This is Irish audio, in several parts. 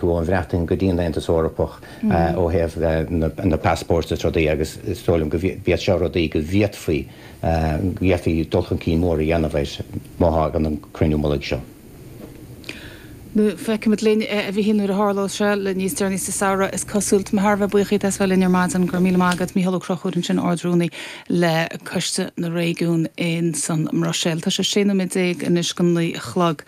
ón mBreatain go dtí'n Aontas Eorpach ó thaobh na passports is rudaí agus is dóigh liom gurb iad seo rudaí go bhféadfaí go bhféadfaí dul chun cinn mór a dhéanamh air má thagann an cruinniú mullaigh seo. Feicfimid linn a Mhichíl nuair a tharlós sé, le níos deireanaí sa samhradh is cosúil. Tá mé thar a bheith buíoch díot as bheith linn ar maidin. Go raibh míle maith agat. Mícheál Ó Crochúir ansin, Ard-Rúnaí. le Coiste na Réigiún in san mBruiséil. Tá sé 16 nóiméad anois don naoi a chlog.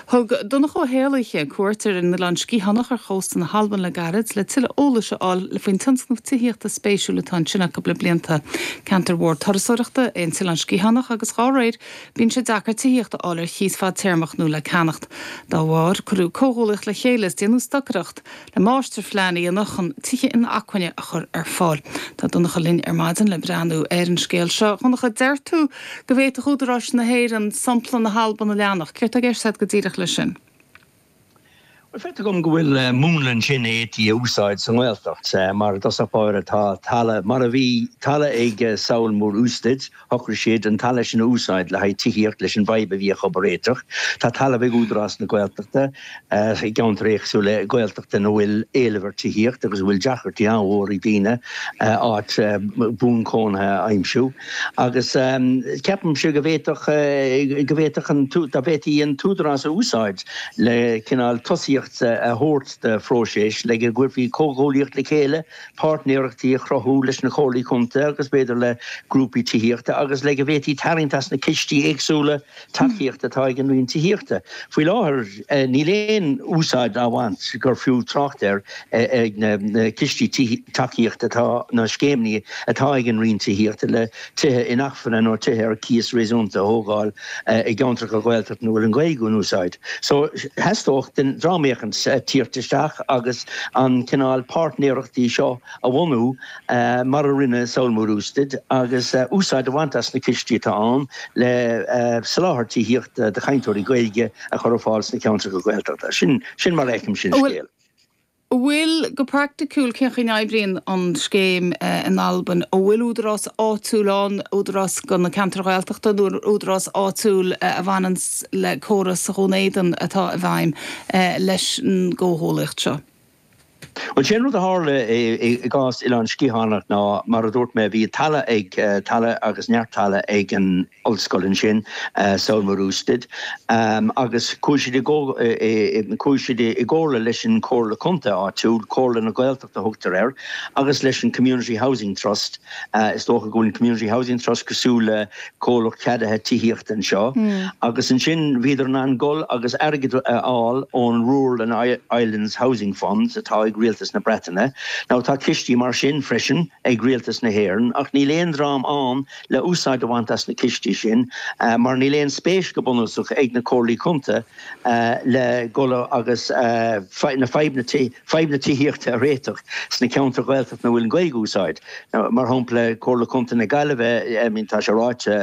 Thug Donncha Ó hÉallaithe cuairt ar an Oileán Sciathánach ar chósta na hAlban le gairid le tuilleadh eolais a fháil faoin tionscnamh tithíochta spéisiúil atá ansin acu le blianta. Ceantar mhór turasóireachta é an tOileán Sciathánach agus dhá réir bíonn sé deacair tithíocht a fháil ar chíos fadtéarmach nó le ceannacht dá bharr, Cuireadh comhghuaillíocht le chéile is déanadh stocaireacht. le máistirphlean a dhéanamh chun tithe inacmhainne a chur ar fáil. Tá Donncha linn ar maidin le breathnú ar an scéal seo. Dhonncha, deir tú go bhféadfadh údaráis na hÉireann sompla na hAlban a leanacht. Céard tá i gceist agat go díreach leis sin? Bhuel, feictear dom go bhfuil múnla ansin a d'fhéadfaí a úsáid sa nGaeltacht. Mar i dtosach báire, tá talamh, mar a bhí talamh ag Sabhal Mòr Ostaig, Shocraigh siad an talamh sin a úsáid le haghaidh tithíocht leis an bhfadhb a bhí acu a réiteach. Tá talamh ag Údarás na Gaeltachta i gceantair éagsúla Gaeltachta ina bhfuil éileamh ar tithíocht agus a bhfuil deacrachtaí an-mhór ag daoine áit buan cónaithe a aimsiú agus ceapaimse go bhféadfadh go bhféadfadh an dá bhféadfaí an tÚdarás a úsáid le cineál tosaíocht a thabhairt do phróiseas le go gcuirfí comhghuaillíocht le chéile páirtnéireachtaí a chruthú leis na Comhairlí Contae agus b'fhéidir le grúpaí tithíochta agus le go bhféadfaí tarraingt as na cistí éagsúla tacaíochta atá ag an Roinn Tithíochta. Faoi láthair, níl aon úsáid á bhaint, gur fiú trácht air, ag na cistí tacaíochta atá, nó scéimeanna atá ag an Roinn Tithíochta le. tithe inacmhainne nó tithe ar cíos réasúnta a thógáil i gceantracha Gaeltachta ina bhfuil an Ghaeilge in úsáid. So, theastódh ó dhream eicínt tíocht isteach agus an cineál páirtnéireachtaí seo a bhunú mar a rinne Sabhal Mòr Ostaig agus úsáid a bhaint as na cistí atá ann le soláthar tithíochta do chainteoirí Gaeilge a chur ar fáil sna ceantracha Gaeltachta. Sin mar a fheicimse an scéal. a bhfuil Go praiticiúil, cén chaoi a n-oibríonn an scéim in Albain? An bhfuil údarás áitiúil ann, údarás do na ceantair Ghaeltachta nó údarás áitiúil a bhaineann le córas Dhún Éideann atá i bhfeidhm leis an gcomhghuaillíocht seo? Bhuel, sé an rud a tharla i gcás Oileán Sgitheanach ná, mar a dúirt mé, bhí talamh ag, talamh agus neart talamh ag an, Ollscoil ansin, Sabhal Mòr Ostaig, agus chuaigh siad i gcomhairle leis an Chomhairle Contae áitiúil, Comhairle na Gaeltachta a thugtar air, agus leis an Community Housing Trust, is dócha go bhfuil an Community Housing Trust cosúil le comhlacht ceadaithe tithíochta anseo, agus ansin bhíodar in ann dul agus airgead a fháil ón Rural and Islands Housing Funds atá ag Rialtas na Breataine. Now tá cistí mar sin freisin ag Rialtas na hÉireann ach níl aon dream ann le úsáid a bhaint as na cistí sin mar níl aon spéis go bunúsach ag na Comhairlí Contae le dhul agus na fadhb na tithíochta a réiteach sna ceantair Ghaeltachta ina bhfuil an Ghaeilge in úsáid mar shampla Comhairle Contae na Gaillimhe I mean tá sé ráite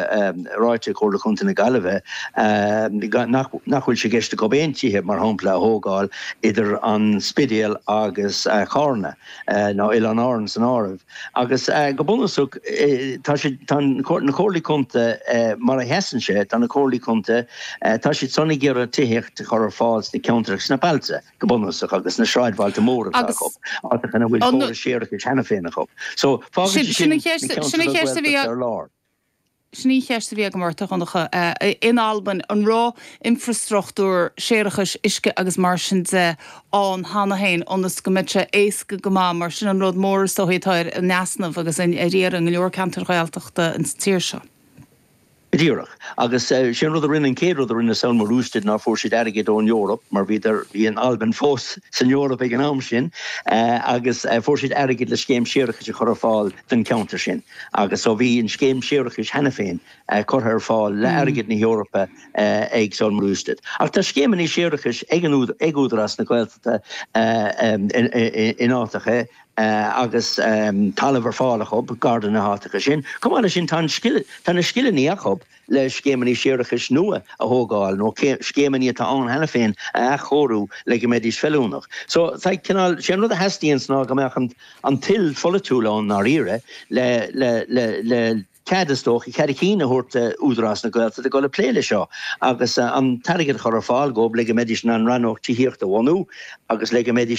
ráite ag Comhairle Contae na Gaillimhe nach nach bhfuil sé i gceist acu aon tithe mar shampla a thógáil idir an Spidéal agus Carna. ná Oileáin Árann san áireamh, agus go bunúsach tá siad, tá na Comhairlí Contae mar a sheasann sé, tá na Comhairlí Contae, tá siadsan ag iarraidh tithíocht a chur ar fáil sna ceantracha, sna bailte go bunúsach agus sna sráidbhailte móra atá acu, áiteacha ina bhfuil córais séarachais cheana féin acu. So fágann sé sin na ceantair a bhfuil Gaeltacht ar lár. Sin í an cheist a bhí agam ort, a Dhonncha. In Albain, an raibh infreastruchtúr séarachais, uisce agus mar sin de, ann cheana féin ionas go mbeadh sé éasca go maith? Mar sin an rud mór is dóichí atá in easnamh agus ar iarraidh i ngo leor ceantair Ghaeltachta an tír seo. Díreach. Agus sé an rud a rinne, an chéad rud a rinne Sabhal Mòr Ostaig ná fuair siad airgead ón Eoraip, mar bhíodar, bhí an Albain fós san Eoraip ag an am sin, agus fuair siad airgead le scéim séarachais a chur ar fáil don cheantar sin. agus so bhí an scéim séarachais cheana féin curtha ar fáil le airgead na hEorpa ag Sabhal Mòr Ostaig. Ach tá scéimeanna séarachais ag Údarás na Gaeltachta in áiteacha agus talamh ar fáil acu gar do na háiteacha sin. Chomh maith leis sin, tá na scileanna acu, le scéimeanna séarachais nua a thógáil nó scéimeanna atá ann cheana féin a athchóiriú le go mbeidís feiliúnach. So, tá cineál, sé an rud a theastaíonns ná go mbeadh an toil pholaitiúil ann i ndáiríre le, le, le, le cead, is dócha, cead a chinn a thabhairt d'Údarás na Gaeltachta a ghoil ag plé le seo agus an t-airgead a chur ar fáil dhóibh le go mbeidís in ann rannóg tithíochta a bhunú agus le go mbeidís in